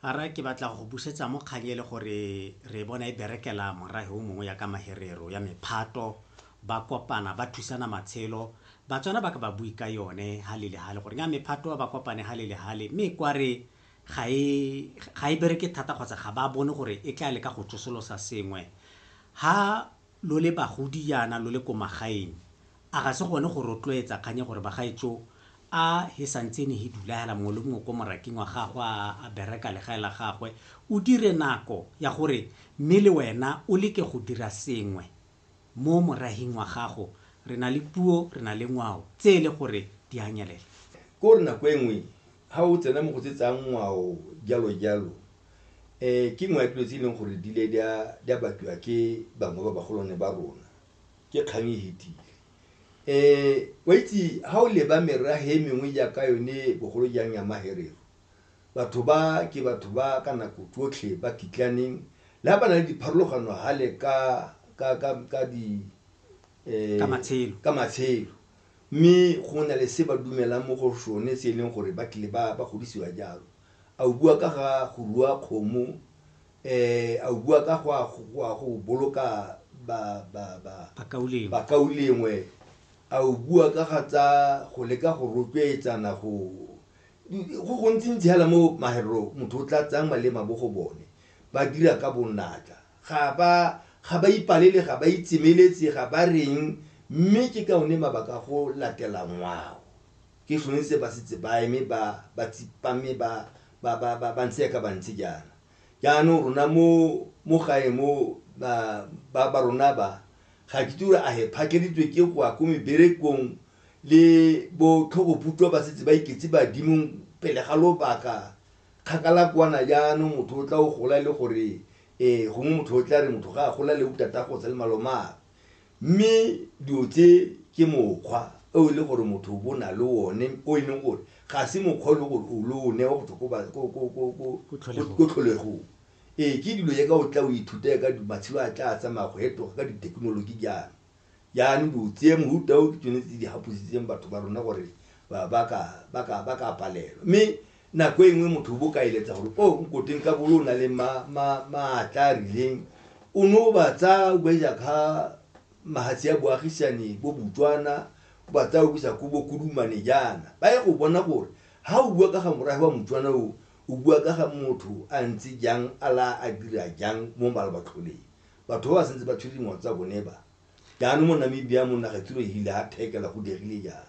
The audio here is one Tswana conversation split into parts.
a re ke batla go busetsa mo kgang ele gore re bona e berekela morahe o mongwe ya ka maherero ya mephato ba kopana ba thusana matshelo batswana ba ka ba bue ka yone ha le le hale gore nga mephato ba kopane ha le le hale mme kwa re ga e ga e bereke thata kgotsa ga ba bone gore e tla le ka go tsosolosa sengwe ha lo le bagodi yana lo le ko magaeng A ga se gone go rotloetsa kgang ya gore bagaetsho a he santsene he dulaela mongwe le mongwe ko moraking wa gagwe a a bereka legae la gagwe o dire nako ya gore mme le wena o leke go dira sengwe mo morahing wa gago re na le puo re na le ngwao tse e le gore di a nyelela ke gore nako e nngwe ha o tsena mo go tse tsa ngwao jalo jalo um ke nngwe ya dilo tse e leng gore di ile di a batliwa ke bangwe ba bagolwane ba rona ke kgang e fetile um wa itse ga o leba merage e mengwe jaaka yone bogolo jang ya maherero batho ba ke batho ba ka nako tsotlhe ba kitlaneng le ga ba na le dipharologano gale ka ka ka ka di um Ka matshelo. ka matshelo mme go na le se ba dumelang mo go sone se e leng gore ba tlile ba ba godisiwa jalo a o bua ka ga go rua kgomo A o bua ka go a go boloka bakaulengwe? A o bua ka ga tsa go leka go rotloetsana go go gontsintsi hela mo maherero motho o tla tsayang malema bo go bone ba dira ka bonatla ga ba ga ba ipalele ga ba itsemeletse ga ba reng mme ke ka one mabaka a go latela ngwao. Ke gone se ba setse ba eme ba ba tsipame ba ba ba ba ba ntse yaka ba ntse jaana. Jaanong rona mo mo gae mo ba ba ba rona ba ga ke itse gore a he phakeleditswe ke go ya ko meberekong le bo tlhogoputwa ba setse ba iketse badimong pele ga lobaka kgakala kwana jaanong motho o tla o gola le gore um gongwe motho o tla re motho ga a gola le botatagosa le malomagwe. Mme dilo tse ke mokgwa o e le gore motho o bo na le one o e leng gore ga se mokgwa o e leng gore o lo o newa go tswa ko ba- ko- ko- ko- ko- Ko tlholegong. ko tlholegong ee ke dilo ya ka o tla o ithuta ka di- matshelo a tla a tsamaya go etoga ka dithekenoloji jaana jaanong dilo tse mohuta o ke tsone tse di gapositseng batho ba rona gore ba ba ka ba ka ba ka palelwa mme Nako e nngwe motho o bo ka eletsa gore o nkoteng ka bolo o na le maatla a rileng o ne o ba tsaya o ba isa ka mahatsi a boagisane bo botswana o ba tsaya o bisa ko bokodumane jaana ba ye go bona gore ha o bua ka ga morafe wa motswana o o bua ka ga motho a ntse jang a la a dira jang mo malabatlholeng batho ba ba sentse ba tshwere dingwao tsa bone ba Jaanong mo Namibia mo naga tsilo e hile a thekela go diegile jang?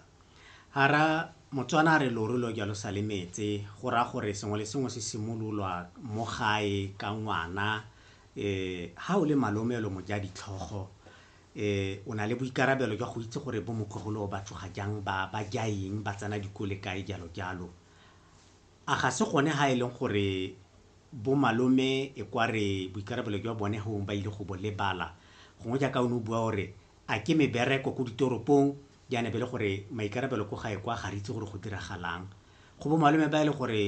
Hara Motswana a re loru lo jalo sa le metse, go raya gore sengwe le sengwe se simololwa mo gae ka ngwana. Um ha o le malome o le mojadi tlhogo um o na le boikarabelo jwa go itse gore bo motlogolo ba tsoga jang, ba ba ja eng, ba tsena dikole kae jalo jalo. A ga se gone ha e leng gore bo malome e kwa re boikarabelo jwa bone gongwe ba ile go bo lebala? Gongwe jaaka o ne o bua o re a ke mebereko ko ditoropong, jaana e be le gore maikarabelo ko gae kwa ga re itse gore go diragalang. Go bo malome ba e le gore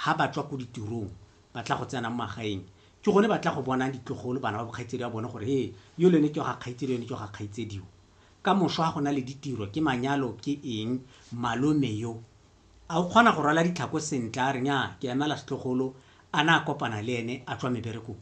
ha ba tswa ko ditirong ba tla go tsena mo magaeng, ke gone ba tla go bonang ditlogolo, bana ba bo kgaitsedi ba bone gore he, yole ne ke wa ga kgaitsedi, yone ke wa ga kgaitsedi yo. Ka moso ha go na le ditiro, ke manyalo, ke eng, malome yo A o kgona go rwala ditlhako sentle? A re, Nnyaa, ke emela setlogolo, a na a kopana le ene a tswa meberekong.